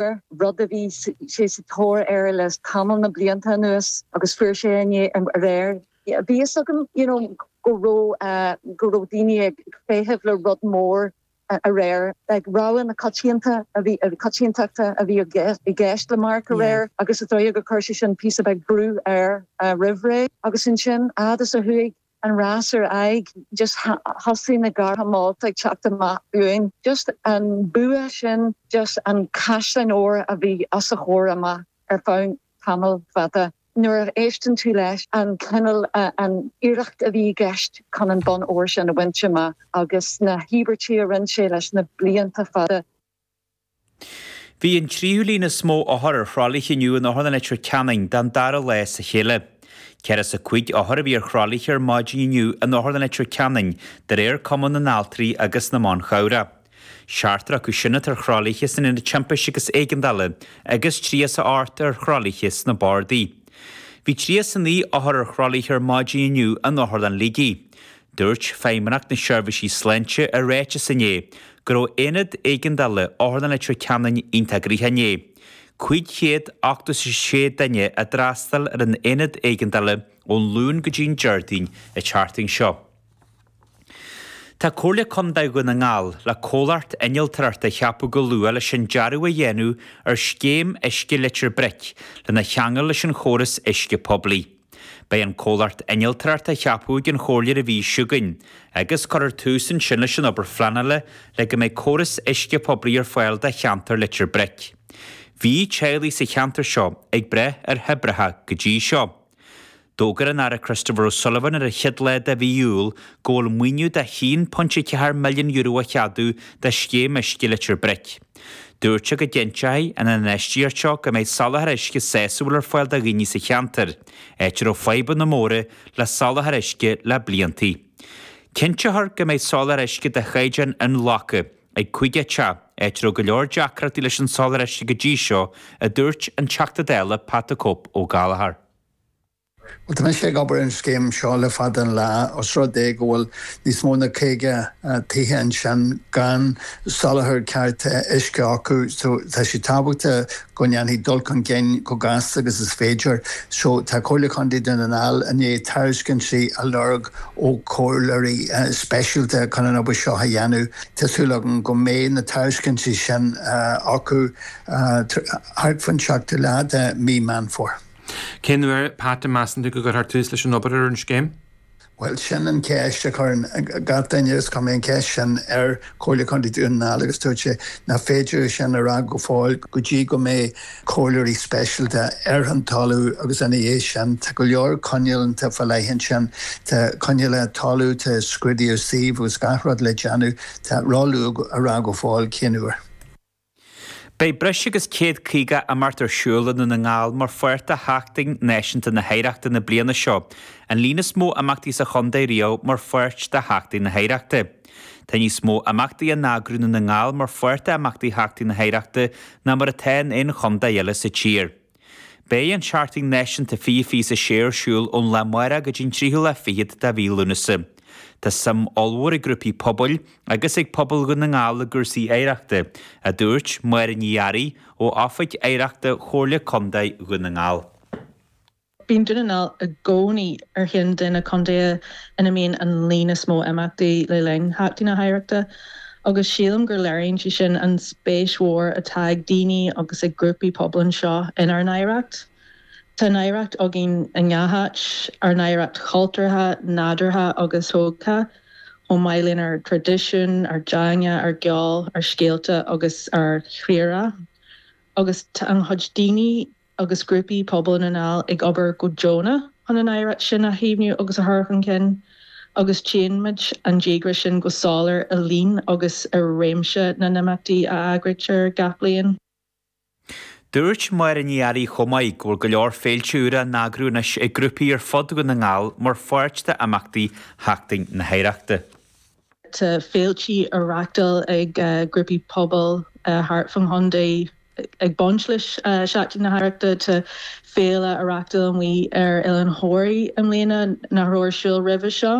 Gaeilge, rud a bhí sé sa tóir air le tamall na blianta anuas agus fuair sé é aréir. Bhí fhios agam you know go raibh, go raibh daoine ag feitheamh le rud mór aréir. Like rogha na coitianta a bhí, coitiantachta a bhí i gceist le Mark aréir agus is dóigh go chuir sé sin píosa beag brú air roimh ré agus ansin a fhad is a chuaigh an rás ar aghaidh, just thosaigh na gártha molta ag teacht amach uainn, just an bua sin, just an caisleán óir a bhí os a chomhair amach ar feadh tamall fada. Nuair a éisteann tú leis an cineál, an iarracht a bhí i gceist chun an bonn óir sin a bhaint amach agus na híobairtí a rinne sé leis na blianta fada, Bhí an tríú líon is mó othar ar thralaithe inniu in Otharlann Leitir Ceanainn don dara lá as a chéile. Ceathracha is a cúig othar a bhí ar thralaithe ar maidin inniu in Otharlann Leitir Ceanainn de réir Cumann na nAltraí agus na mBan Cabhrach. Seachtar acu sin atá ar thralaithe san Ionad Timpiste agus Éigeandála agus tríocha is a hocht ar thralaithe sna bardaí. Bhí tríocha is a naoi othar ar thralaithe ar maidin inniu in Otharlann Shligigh. Dúirt Feidhmeannacht na Seirbhíse Sláinte i ráiteas inné go raibh aonad éigeandála Otharlann Leitir Ceanainn iontach gnoitheach inné. 586 duine a d'fhreastail ar an aonad éigeandála ón Luan go dtí an Déardaoin a chuaigh thart seo. Tá Comhairle Contae Dhún na nGall le comhlacht innealtoireachta a cheapadh go luath leis an dearadh a dhéanamh ar scéim uisce Leitir Bric lena cheangal leis an chóras uisce poiblí. Beidh an comhlacht innealtóireachta ceaptha ag an chomhairle ar an mhí seo chugainn, agus cuirfear tús ansin leis an obair phleanála le go mbeidh córas uisce poiblí ar fáil do cheantar Leitir Bric. Bhí teaghlaigh sa cheantar seo ag brath ar thoibreacha go dtí seo. D'fhógair an tAire Christopher O'Sullivan ar an chéad lá de mhí Iúil go bhfuil maoiniú de €1.4 milliún á cheadú do scéim uisce Leitir Bric. Dúirt sé go gcinnteoidh an infheistíocht seo go mbeidh soláthar uisce sásúil ar fáil do dhaoine sa cheantar, áit a raibh fadhbanna móra le soláthar uisce le bliantaí. Cinnteofar go mbeidh soláthar uisce de chaighdeán inghlactha ag caoga teach, áit a raibh go leor deacrachtaí leis an soláthar uisce go dtí seo, a dúirt an Teachta Dála Pat the Cope Ó Gallchóir. Bhuel, tá mise ag obair ar an scéim seo le fada an lá. Os rud é go bhfuil níos mó ná caoga tithe ansin gan soláthar ceart uisce acu so tá sé tábhachtach go ndéanfaí dul chun cinn chomh gasta agus is féidir. So tá Comhairle Chontae Dhún na nGall i ndiaidh tairiscintí a lorg ó chomhairleoirí speisialta chun an obair seo a dhéanamh. Tá súil agam go mbeidh na tairiscintí sin acu thart fán seachtú lá de mhí Meán Fómhair. Cén uair, Pat, a mheasann tú go gcuirfear tús leis an obair ar an scéim? Bhuel, sin an cheist a chuireann gach duine agus chuir mé an cheist sin ar Chomhairle Contae Dhún na nGall agus dúirt sé nach féidir é sin a rá go fóill go dtí go mbeidh comhairleoirí speisialta ar an talamh agus ina dhiaidh sin tá go leor coinníollacha fá leith ansin, tá coinníollacha talaimh, tá scrúduithe suímh agus gach rud le déanamh, tá ró-luath a rá go fóill cén uair. Beidh breis agus céad caoga imeacht ar siúl i nDún na nGall mar pháirt de Sheachtain Náisiúnta na hOidhreachta na bliana seo, an líon is mó imeachtaí sa chontae riamh mar pháirt de Sheachtain na hOidhreachta. Tá níos mó imeachtaí á n-eagrú i nDún na nGall mar pháirt d'imeachtaí Sheachtain na hOidhreachta ná mar atá in aon chontae eile sa tír. Beidh an tSeachtain Náisiúnta 2026 ar siúl ón lá amárach go dtí an tríú lá fichead de mhí Lúnasa. Tá suim ollmhór ag grúpaí pobail agus ag pobal Dhún na nGall i gcúrsaí oidhreachta, a dúirt Máire Ní Fhearraigh ó Oifig Oidhreachta Chomhairle Contae Dhún na nGall. Bíonn Dún na nGall i gcónaí ar cheann de na contaetha ina mbíonn an líon is mó imeachtaí le linn Sheachtain na hOidhreachta. agus sílim gur léiríonn sé sin an spéis mhór atá ag daoine agus ag grúpaí pobail anseo inár n-oidhreacht. Tá an oidhreacht againn i ngach áit, ár n-oidhreacht chultúrtha, nádúrtha agus thógtha, chomh maith lenár dtraidisiún, ár dteanga, ár gceol, ár scéalta agus ár gceird. Agus tá an-chuid daoine. agus grúpaí pobail i nDún na nGall ag obair go deonach chun an oidhreacht sin a chaomhnú agus a chur chun cinn, agus tchíonn muid an díograis sin go soiléir i líon agus i réimse na n-imeachtaí a eagraítear gach bliain. Dúirt Máire Ní Fhearraigh chomh maith go bhfuil go leor féilte úra á n-eagrú anois ag grúpaí ar fud Dhún na nGall mar pháirt d'imeachtaí Sheachtain na hOidhreachta. Tá féilte á reachtáil ag grúpaí pobail thart fán chontae ag baint le Seachtain na hOidhreachta. Tá féile á reachtáil amuigh ar Oileán Thóraí i mbliana nach raibh ar siúl roimhe seo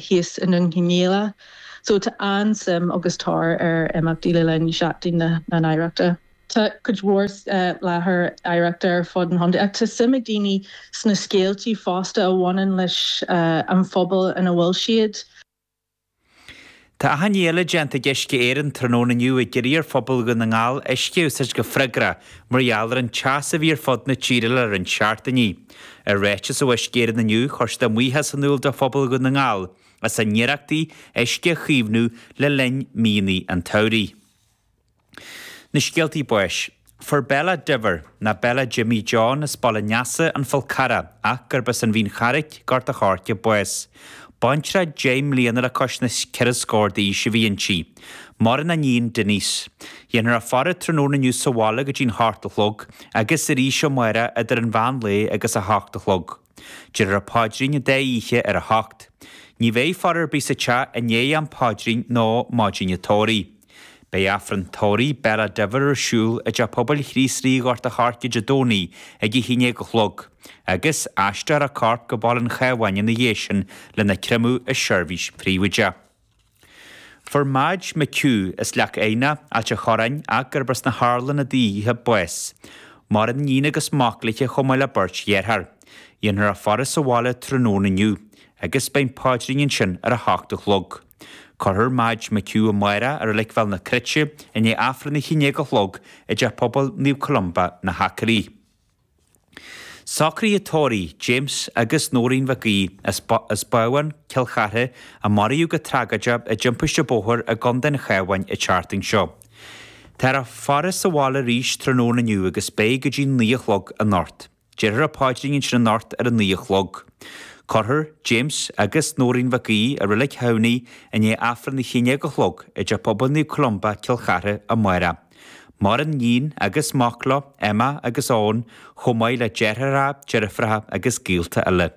thíos i nDún Cionnaola. So tá an-suim agus tóir ar imeachtaí le linn Sheachtain na hOidhreachta. Tá cuid mhór láithreacha oidhreachta ar fud an chontae ach tá suim ag daoine sna scéaltaí fosta a bhaineann leis an phobal ina bhfuil siad. Tá achainí eile déanta ag Uisce Éireann tráthnóna inniu ag iarraidh ar phobal Dhún na nGall uisce a úsáid go freagrach mar gheall ar an teas a bhí ar fud na tíre le roinnt seachtainí. I ráiteas ó Uisce Éireann inniu, chuir siad a mbuíochas in iúl do phobal Dhún na nGall as a n-iarrachtaí uisce a chaomhnú le linn míonna an tsamhraidh. Na Scéaltaí Báis. Fuair Bella Diver, ná Bella Jimmy John, as Baile an Easa, An Fál Carrach, ach gurb as an Mhín Charraic, Gort a' Choirce, bás. Baintreach deich mbliana le cois na ceithre scór d'aois a bhí inti. Maireann a níon, Denise. Dhéanfar a faire tráthnóna inniu sa bhaile go dtí'n hocht a chlog, agus arís amárach idir an mheán lae agus a hocht a chlog. Déarfar an paidrín an dá oíche ar a hocht. Ní bheidh faire ar bith sa teach i ndiaidh an phaidrín nó maidin an tórraimh. Beidh Aifreann tórraimh Bella Diver ar siúl i dTeach Pobail Chríost Rí Ghort a' Choirce Dé Domhnaigh ag a haon déag a chlog, agus aistreofar a corp go Baile an Chabháin ina dhiaidh sin lena créamadh i seirbhís phríobháideach. Fuair Madge McHugh as Leac Eidhneach, Ailt an Chorráin ach gurb as na hArlanna daoithe, bás. Maireann iníon agus mac léithe chomh maith le beirt dhearthár. Dhéanfar a faire sa bhaile tráthnóna inniu agus beidh an paidrín ansin ar a hocht a chlog. Cuirfear Madge McHugh amárach i Reilig Bhéal na Cruite i ndiaidh Aifreann a haon dhéag a chlog i dTeach Pobail Naomh Columba, Na hAcraí. Socruithe tórraimh James agus Nóirín Mhic Aoidh, as Babhán, Cill Chartha, a maraíodh go tragóideach i dtimpiste bóthair i gContae an Chabháin, an tseachtain seo. Táthar á bhfaire sa bhaile arís tráthnóna inniu agus beidh go dtí naoi a chlog anocht. Déarfar an paidrín ansin anocht ar a naoi a chlog. Cuirfear James agus Nóirín Mhic Aoidh i Reilig Thamhnaigh i ndiaidh Aifreann a haon déag a chlog i dTeach Pobail Naomh Columba, Cill Chartha, amárach. Maireann níon agus mac leo, Emma agus Eoin, chomh maith le deartháireacha, deirfiúracha agus gaolta eile.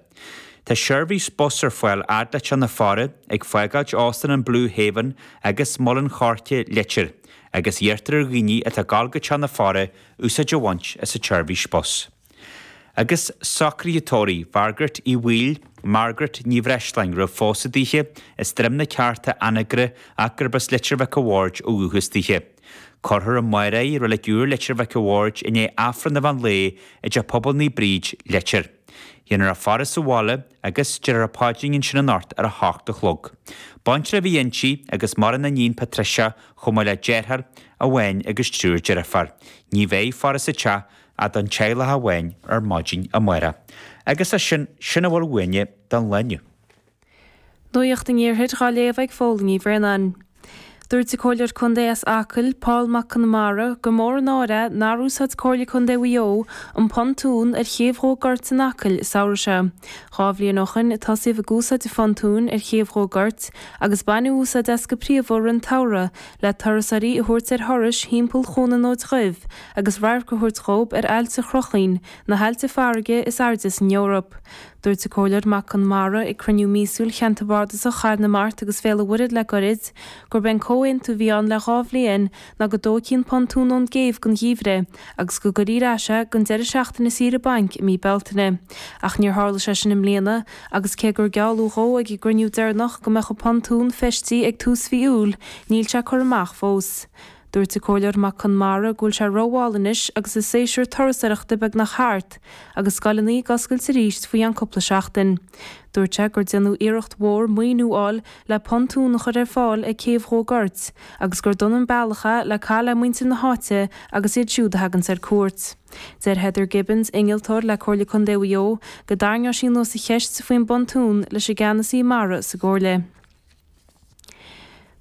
Tá seirbhís bus ar fáil fhad le teach na faire, ag fágáilt Óstán an Blue Haven agus Muileann Choirce Leitir, agus iarrtar ar dhaoine atá ag dul go teach na faire úsáid a bhaint as an tseirbhís bus. agus socruithe tórraimh Mhargaret Uí Bhaoill, Margaret Ní Bhreisleáin, roimh phósadh daoithe, as Droim na Ceárta, Anagaire ach gurb as Leitir Mhic a' Bhaird ó dhúchas daoithe. Cuirfear amárach í i Reilig Iúir, Leitir Mhic a' Bhaird, i ndiaidh Aifreann an mheán lae i dTeach Pobail Naomh Bríd, Leitir. Dhéanfar a faire sa bhaile agus déarfar an paidrín ansin anocht ar a hocht a chlog. Baintreach a bhí inti agus maireann a iníon Patricia chomh maith le deartháir amháin agus triúr deirfiúr. Ní bheidh faire sa teach ach don teaghlach amháin ar maidin amárach, agus leis sin, sin a bhfuil uainne den lá inniu. Nuaíocht an Iarthair dhá léamh ag Fódhla Ní Bhraonáin. Dúirt an Comhairleoir Contae as Acaill, Paul Mac Conmara, gur mór an náire é nár úsáid Comhairle Contae Mhaigh Eo an pontún ar Chéibh Dhumha Goirt in Acaill an samhradh seo. Dhá bhliain ó shoin a tosaíodh ag úsáid an phontúin ar Chéibh Dhumha Goirt agus baineadh úsáid as go príomha i rith an tsamhraidh le turasóirí a thabhairt ar thurais thimpeall Chuan an Fhóid Dhuibh agus radharc a thabhairt dhób ar Aillte Chruacháin, na haillte farraige is airde san Eoraip. Dúirt an Comhairleoir Mac Conmara ag cruinniú míosúil Cheantar Bardasach Chathair na Mart agus Bhéal an Mhuirthead le gairid, gurb é an comhaontú a bhí ann le dhá bhliain ná go dtógfaí an pontún ón gcéibh don gheimhreadh agus go gcuirfí ar ais é don deireadh seachtaine saoire bainc i mí Bealtaine. Ach níor tharla sé sin i mbliana agus cé gur gealladh dhó ag an gcruinniú deireanach go mbeadh an pontún feistithe ag tús mhí Iúil, níl sé curtha amach fós. Dúirt an Comhairleoir Mac Conmara go bhfuil sé rómhall anois agus an séasúr turasóireachta beagnach thart agus scoileanna ag oscailt arís faoi cheann cúpla seachtain. Dúirt sé gur déanadh iarracht mhór maoiniú a fháil le pontún a chur ar fáil ag céibh Dhumha Goirt agus gur dona an bealach é le caitheamh le muintir na háite agus iad siúd a thaganns ar cuairt. Deir Heather Gibbons, innealtóir le Comhairle Contae Mhaigh Eo, go dtarraingeodh sí anuas an cheist faoin bpontún leis an gceannasaí mara sa gComhairle.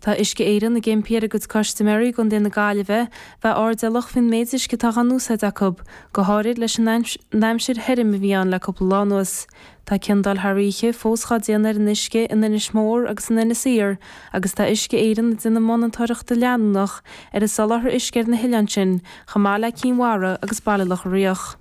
Tá Uisce Éireann ag impí ar a gcuid custaiméirí i gContae na Gaillimhe bheith airdeallach faoin méid uisce atá dhá n-úsáid acu, go háirid leis an n-aimsir thirim a bhí ann le cúpla lá anuas. Tá ciondáil thar oíche fós dhá déanamh ar an uisce in Inis Mór agus in Inis Oírr agus tá Uisce Éireann ag déanamh monatóireachta leanúnach ar an soláthar uisce ar na hoileáin sin chomh maith le Cinn Mhara agus Baile Locha Riach.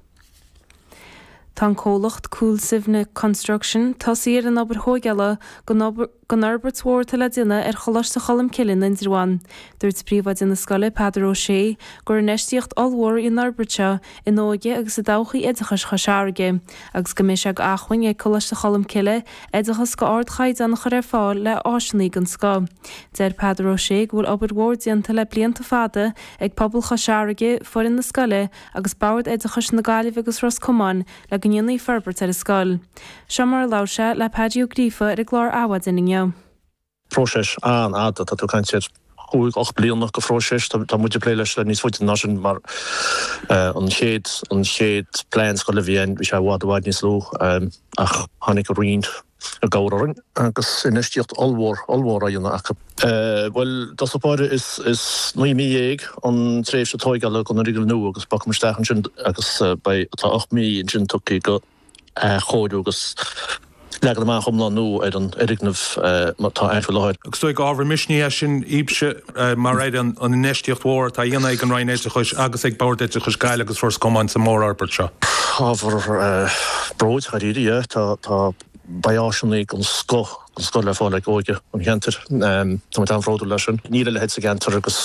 Tá an comhlacht Coolsivna Construction tosaithe ar an obair thóigeála don fhorbairt mhór atá le déanamh ar Choláiste Cholmcille in Indreabhán. Dúirt Príomhoide na scoile, Peadar Ó Sé, gur infheistíocht ollmhór í an fhorbairt seo in óige agus i dtodhchaí oideachais Chois Fharraige agus go mbeidh sé go acmhainn ag Coláiste Cholmcille oideachas go ardchaighdeán a chur ar fáil le áiseanna den scoth. Deir Peadar Ó Sé go bhfuil obair mhór déanta le blianta fada ag pobal Chois Fharraige, foireann na scoile, agus Bord Oideachais na Gaillimhe agus Ros Comáin le go ndéanfaí forbairt ar an scoil. Seo mar a labhair sé le Peaidí Ó Gríofa ar an gclár Adhmhaidin inniu. Próiseas an-fhada tá tú ag caint ar chúig, ocht mbliana de phróiseas. Tá muid ag plé leis le níos faide ná sin mar an chéad, an chéad plean scoile a bhí ann, bhí sé i bhfad, i bhfad níos lú ach tháinig an Roinn i gcabhair orainn agus infheistíocht ollmhór, ollmhór, á dhéanamh acu. Bhuel, dos na páirthe is naoi mí dhéag an tréimhse tóigeála don fhoirgneamh nua agus bogfaidh muid isteach ansin agus beidh, tá ocht mí ansin tugtha go athchóiriú agus leagan amach iomlán nua ar an fhoirgneamh mar atá faoi láthair. Agus is dóigh gur ábhar misnigh é sin dhíbse, mar ar an infheistíocht mhór atá á dhéanamh ag an Roinn Oideachais agus ag Bord Oideachais Gaillimh agus Ros Comáin sa mhórfhorbairt seo. Ábhar bróid, dháiríre, é. Tá, tá, beidh áiseannaí den scoth den scoth le fáil ag óige an cheantair. Tá muid an-bhródúil as sin. Níl a leithéid sa gceantar agus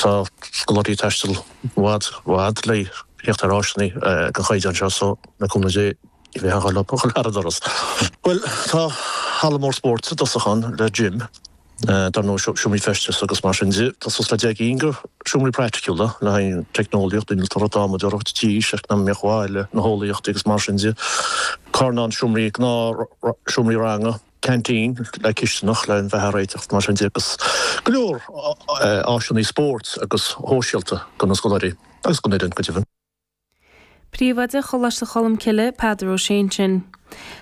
tá scoláirí ag taisteal i bhfad, i bhfad le tíocht ar áiseanna den chaighdeán seo so, le cúnamh Dé, ní bheidh a dhath leo a chur thar an doras. Bhuel, tá halla mór spóirt i dtosach ann le gym, dar ndóigh, seomraí feistis agus mar sin de. Tá suas le 10 gcinn de sheomraí praiticiúla le haghaidh an teicneolaíocht, an innealtóireacht, adhmadóireacht, tíos, eacnamaíocht bhaile, na heolaíochtaí agus mar sin de, carnán seomraí gnáthsheomraí ranga, canteen, le cisteanach le béilí a réiteach agus mar sin de agus go leor áiseanna spóirt agus shóisialta do na scoláirí agus don fhoireann go deimhin. Príomhoide Choláiste Cholmcille, Peadar Ó Sé ansin.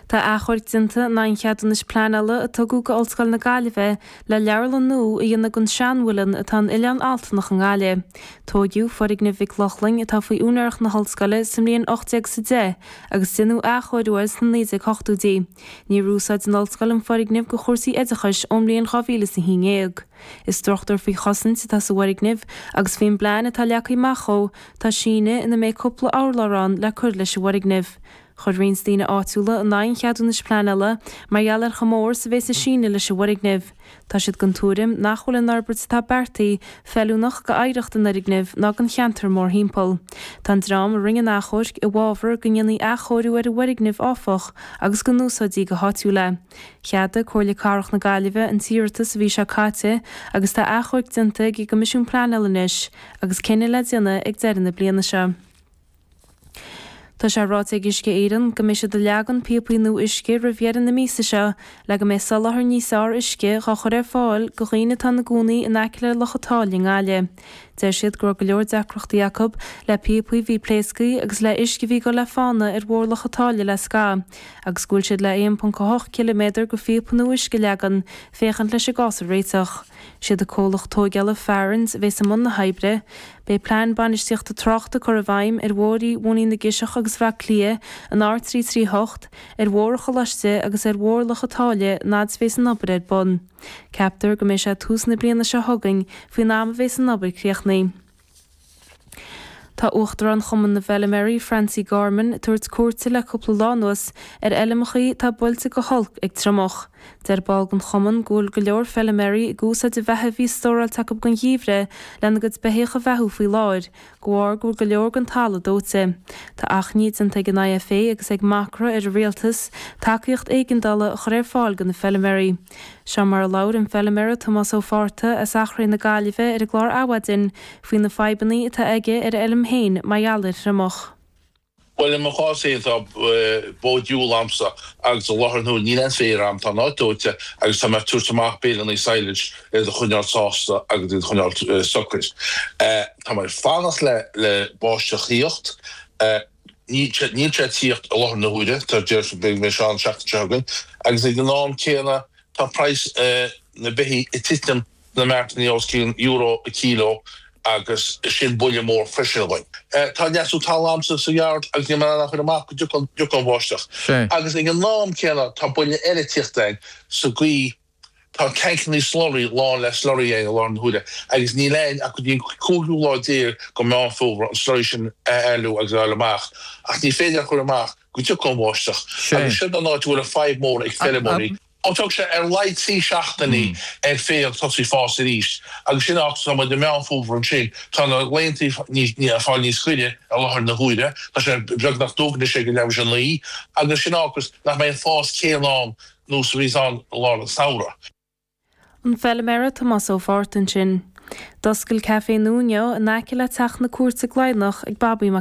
Tá achomharc déanta in aghaidh an cheadúnais pleanála a tugadh go Ollscoil na Gaillimhe le leabharlann nua a dhéanamh den seanmhuileann atá in Oileán Altanach i nGaillimh. Tóigeadh foirgneamh Mhic Lochlainn, atá faoi úinéireacht na hOllscoile, sa mbliain 1800 sa deich agus deineadh athchóiriú air sna 1980idí. Níor úsáid an Ollscoil an foirgneamh go chúrsaí oideachais ón mbliain 2000 is na haon dhéag. Is struchtúr faoi chosaint atá sa bhfoirgneamh agus faoin bplean atá leagtha amach dhó, Tá síneadh ina mbeidh cúpla urlár ann le cur leis an bhfoirgneamh. Chuir roinnt daoine áitiúla in aghaidh an cheadúnais pleanála mar gheall ar chomh mór is a bheas an síneadh leis an bhfoirgneamh. Tá siad den tuairim nach bhfuil an fhorbairt atá beartaithe feiliúnach d'oidhreacht an fhoirgnimh ná don cheantar mórthimpeall. Tá an dream a rinne an t-achomharc i bhfabhar go ndéanfaí athchóiriú ar an bhfoirgneamh áfach agus go n-úsáidfí go háitiúil é. Cheadaigh Comhairle Cathrach na Gaillimhe an t-iarratas an mhí seo caite agus tá achomharc déanta chuig an gCoimisiún Pleanála anois agus cinneadh le déanamh ag deireadh na bliana seo. Tá sé ráite ag Uisce Éireann go mbeidh siad ag leagan píopaí nua uisce roimh dheireadh na míosa seo le go mbeidh soláthar níos fearr uisce dhá chur ar fáil do dhaoine atá ina gcónaí in aice le Loch a' tSáile i nGaillimh. Deir siad go raibh go leor deacrachtaí acu, le píopaí a bhí pléasctha agus le huisce a bhí ag goil le fána ar Bhóthar Loch a' tSáile le scaitheamh, agus go bhfuil siad le 1.8 km go phíopa nua uisce a leagan, féachaint leis an gcás a réiteach. Siad an comhlacht tógála Farrands a bhéas i mbun na hoibre. Beidh plean bainistíochta tráchta curtha i bhfeidhm ar bhóithrí Mhóinín na gCiseach agus Bhaile Átha Cliath an R338, ar Bhóthar an Choláiste agus ar Bhóthar Loch a' tSáile an fhad a bhéas an obair ar bun. Ceaptar go mbeidh sé tús na bliana seo chugainn, faoin am a bheas an obair críochnaithe. Tá Uachtarán Chumann na bhFeilméaraí, Francie Gorman, ag tabhairt cuairte le cúpla lá anuas ar fheilmeachaí atá buailte go holc ag triomach. Deir ball den chumann go bhfuil go leor feilméaraí ag úsáid an bheatha a bhí stóráilte acu don gheimhreadh lena gcuid beithígh a bheathú faoi láthair de bharr go bhfuil go leor den talamh dóite. Tá achainí déanta ag an IFA agus ag Macra ar an Rialtas tacaíocht éigeandála a chur ar fáil do na feilméaraí. Seo mar a labhair an feilméara Tomás Ó Fátharta as Achréidh na Gaillimhe ar an gclár Adhmhaidin faoi na fadhbanna atá aige ar a fheilm féin mar gheall ar an triomach. Bhuel, i mo chás féin, tá bó diúil agamsa agus i láthair na huaire níl aon féar agam, tá an áit dóite agus tá mé ag tabhairt amach béileanna silage iad a choinneáil sásta agus iad a choinneáil socair. Tá mé ag fanacht le báisteach a thíocht. Níl sé ag tíocht i láthair na huaire, deirtear go mbeidh sé ann an seachtain seo chugainn, agus ag an am céanna tá praghas na beithígh ag titim. na martanna os cionn euro an kilo agus sin buille mór freisin againn. Tá leasú tadhaill agamsa sa yard agus níl mé in ann a chur amach go dtiocfaidh an bháisteach. Agus ag an am céanna tá buille eile ag tíocht orainn sa gcaoi tá tancannaí slurry lán le slurry againn i láthair na huaire agus níl againn ach go dtí an cúigiú lá déag go Meán Fómhair an slurry sin a éalú agus a fháil amach ach ní féidir a chur amach go dtiocfaidh an bháisteach. Agus sin an áit a bhfuil an fadhb mór ag feirmeoirí. Ó tógfaidh sé ar a laghad trí seachtainí ar féar tosú ag fás arís agus sin áit atá muid i Meán Fómhair ansin. Tá na laethanta ag fáil níos gaire i láthair na huaire, tá sé beagnach dubh anois ag leath tar éis a naoi agus sin a fhágas nach mbeidh an fás céanna ann nós a bhíonns i lár an samhradh. An feilméara Tomás Ó Fátharta ansin. D'oscail Café Nuno in aice le teach na cúirte Gleidhneach ag Babaí Mac.